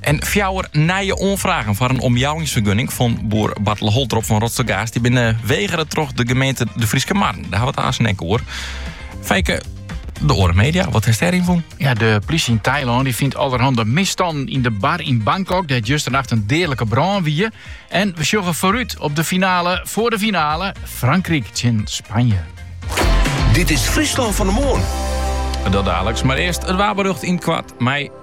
En fjouwer nije oanfragen foar in omjouwingsfergunning fan boer Bartele Holtrop fan Rotstergaast. Die binne wegere troch de gemeente De Fryske Marren. Dêr ha we it aansen ek oer. Fijke, de oare media, wat hast dêryn fûn? Ja, de plysje yn Tailân dy fynt allerhande misstannen yn de bar yn Bangkok dêr't justernacht in deadlike brân wie. En we sjogge foarút op de finale foar de finale Frankryk tsjin Spanje. Dit is Fryslân fan 'e Moarn. Dat daliks, mar earst it waarberjocht yn it koart mei.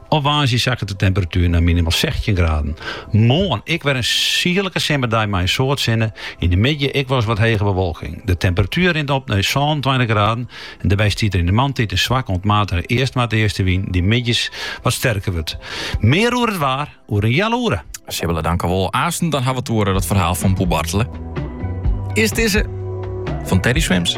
Op woansdei sakket de temperatuer nei minimaal sechstjin graden. Moarn ek wer in sierlike simmerdei mei in soad sinne. Yn de middei ek wolris wat hege bewolking. De temperatuer rint op nei sânentweintich graden en dêrby stiet der yn de moarntiid in swakke oant matige east-noardeastewyn dy't middeis wat sterker wurdt. Mear oer it waar oer in heal oere. Sibylle, dankjewol. Aansen dan hawwe we it oer it ferhaal fan boer Bartele. Earst dizze fan Teddy Swims.